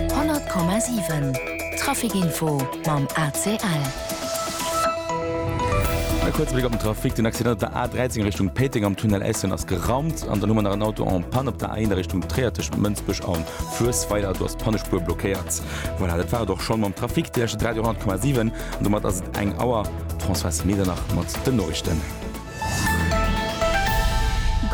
100,7 Trafic Info mam ACL. E kuerze Bléck op den Trafic, Den Accident op der A13 a Richtung Péiteng am Tunnel Eysschen ass geraumt an dann hu mer nach en Auto en panne op der A1 a Richtung Tréier tëscht Mënsbech a Fluessweiler. Do ass d'Pannespuer blockéiert. Voilà, dat war et och schonn mam Trafic. Dir lauschtert Radio 100,7 an domat ass et eng Auer. D'Françoise Medernach mat den Noriichten.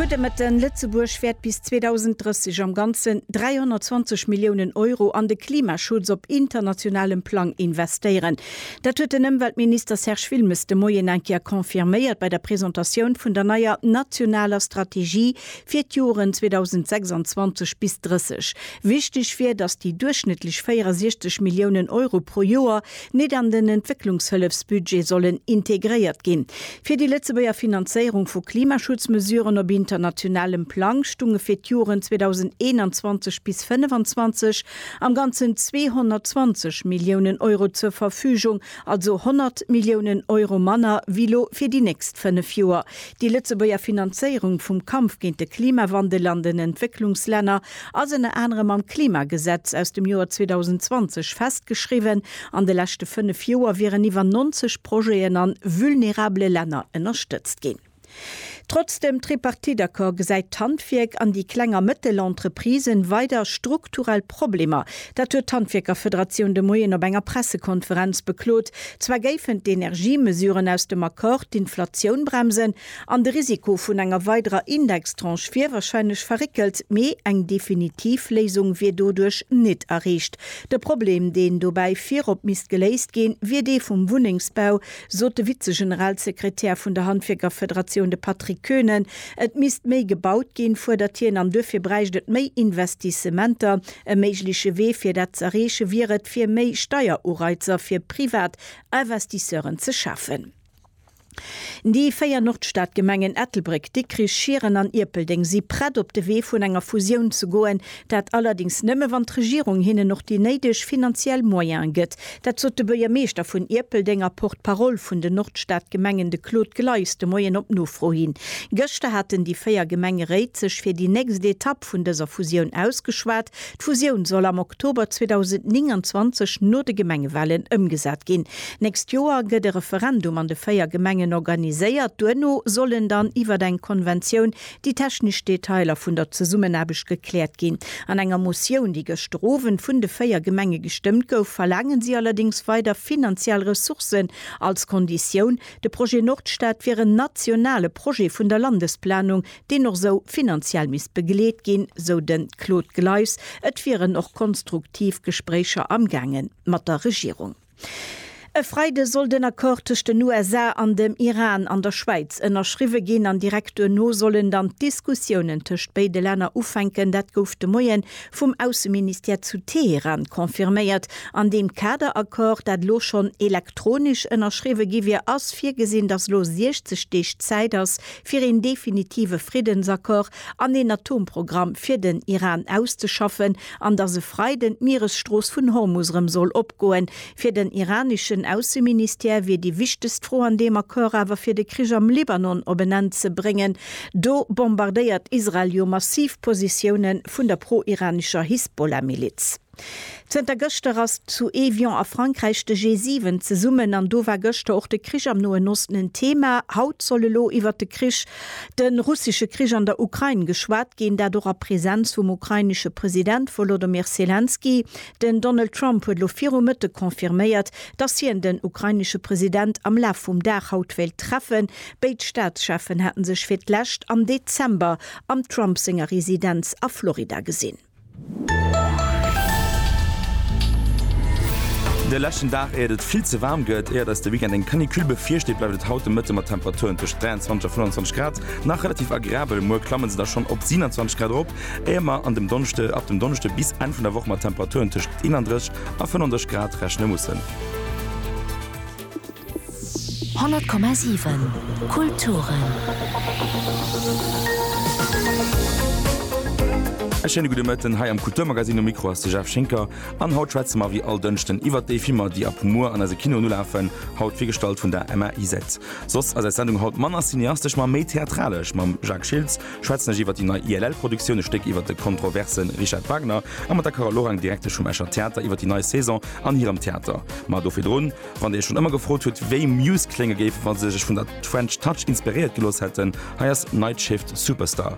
Gudde Mëtten, Lëtzebuerg wäert bis 2030 am Ganzen 320 Milliounen Euro an de Klimaschutz op internationalem Plang investéieren. Dat huet den Ëmweltminister Serge Wilmes de Moien eng Kéier confirméiert bei der Presentatioun vun der neier nationaler Strategie fir d'Joren 2026 bis 30. Wichteg wier, datt déi duerchschnëttlech 64 Milliounen Euro pro Joer, nit an den Entwécklungshëllefsbudget sollen integréiert ginn. Fir déi Lëtzebuerger Finanzéierung vu Klimaschutzmesuren op internationalem Plang stunge fir d'Joren 2021 bis 2025 am Ganzen 220 Milliounen Euro zur Verfügung, also 100 Milliounen Euro manner wéi lo fir déi nächst fënnef Joer. Déi Lëtzebuerger Finanzéierung vum Kampf géint de Klimawandel an den Entwécklungslänner ass ënner anerem am Klimagesetz aus dem Joer 2020 festgeschriwwen, an de leschte fënnef Joer wieren iwwer 90 Projeten an vulnerabele Länner ënnerstëtzt ginn. Trotz dem Tripartite-Accord gesäit d'Handwierk an déi kleng a mëttel Entreprisen weider strukturell Problemer. Dat huet d'Handwierkerfederatioun de Moien op enger Pressekonferenz beklot. Zwar géifen d'Energiemesuren aus dem Accord d'Inflatioun bremsen, An de Risiko vun enger weiderer Indextranche wier wahrscheinlech verréckelt, mee eng definitiv Léisung wier doduerch nit erreecht. De Problem, deen dobäi virop misst geléist ginn, wier dee vum Wunnengsbau, sot de Vize-Generalsekretär vun der Handwierkerfederatioun, de Patrick Koenen. Et misst méi gebaut ginn, fuerdert hien, an duerfir bräicht et méi Investissementer. E méigleche Wee, fir dat z'erreeche wier et, fir méi Steierureizer fir privat Investisseuren ze schafen. Déi véier Nordstadgemengen Ettelbréck, Dikrich, Schieren an Ierpeldeng si prett op de Wee vun enger Fusioun ze goen. Dat allerdéngs nëmme wann d'Regierung hinnen och déi néideg finanziell Moyene gëtt. Dat sot de Buergermeeschter vun Ierpeldeng a Porte-parole vun den Nordstadgemengen, de Claude Gleis, de Moien op Nofro hin. Gëschter haten déi véier Gemengeréit sech fir déi nächst Etapp vun dëser Fusioun ausgeschwat. D'Fusioun soll am Oktober 2029 no de Gemengewalen ëmgesat ginn. Nächst Joer gëtt e Referendum an de véier Gemengen organiséiert. Duerno sollen dann iwwer eng Konventioun déi technesch Detailer vun der Zesummenaarbecht gekläert ginn. An enger Motioun, déi gëschter Owend vun de véier Gemenge gestëmmt gouf, verlaangen si allerdéngs weider finanziell Ressourcen als Konditioun. De Projet Nordstad wier en nationale Projet vun der Landesplanung, deen och esou finanziell misst begleet ginn, sou de Claude Gleis. Et wieren och konstruktiv Gespréicher amgaange mat der Regierung. E Freide soll den Accord tëscht den USA an dem Iran an der Schwäiz ënnerschriwwe ginn an direkt duerno sollen dann d'Diskussiounen tëscht béide Länner ufänken. Dat gouf de Moie vum Ausseministère zu Teheran confirméiert. An deem Kader-Accord, dat elo schonn elektronesch ënnerschriwwe gi wier, ass virgesinn, datt elo 60 Deeg Zäit ass, fir een definitive Friddensaccord an een Atomprogramm fir den Iran auszeschaffen, an datt e Freiden d'Mieresstrooss vun Hormus erëm soll opgoen. Fir den iraneschen Ausseministère wier déi wichtegst Fro an deem Accord awer fir de Krich am Libanon op en Enn ze bréngen. Do bombardéiert Israel jo massiv Positioune vun der pro-iranescher Hisbollah-Miliz. Zënter gëschter ass zu Évian a Frankräich de G7 zesummen an do war gëschter och de Krich am Noen Osten en Thema. Haut soll elo iwwert de Krich, de russesche Krich an der Ukrain geschwat ginn, dat och a Presenz vum ukrainesche President Wolodomyr Selenskyj. Den Donald Trump huet elo viru Mëtteg confirméiert, dass hien den ukrainesche President am Laf vum Dag haut wéilt treffen. Béid Staatscheffen hate sech fir d'lescht am Dezember am Trump senger Residenz a Florida gesinn. De leschten Dag éiert et vill ze waarm gëtt. Éiert eis de Weekend eng Canicule bevirsteet, bleift et haut de Mëtte mat Temperaturen tëscht 23 a 25 Grad nach relativ agreabel. Muer klamme se da schonn op 27 Grad erop, éier mer an dem Donneschde, ab dem Donneschde bis Enn vun der Woch mat Temperaturen tëscht 31 a 35 Grad rechne mussen. 100,7 Kulturen. E schéine gudde Mëtten hei am Kulturmagazin. Um Mikro ass de Jeff Schinker an haut schwätze mer wéi all Dënschden iwwert déi Filmer, déi ab muer an eise Kinoen ulafen. Haut virgestallt vun der Emma Isett. Soss ass eis Sendung haut manner cineastesch, ma méi theatralesch mam Jacques Schiltz. Schwätzen ech iwwer déi nei ILL-Produktioun, e Stéck iwwer de kontroverse Richard Wagner a mat der Carole Lorang, Direktesch vum Escher Theater, iwwer déi nei Saison an hirem Theater. Ma do virdrun, wann Dir Iech schonn ëmmer gefrot hutt, wéi Muse klénge géif, wa se sech vun der French Touch inspiréiert gelooss hätten, hei ass Night Shift Superstar.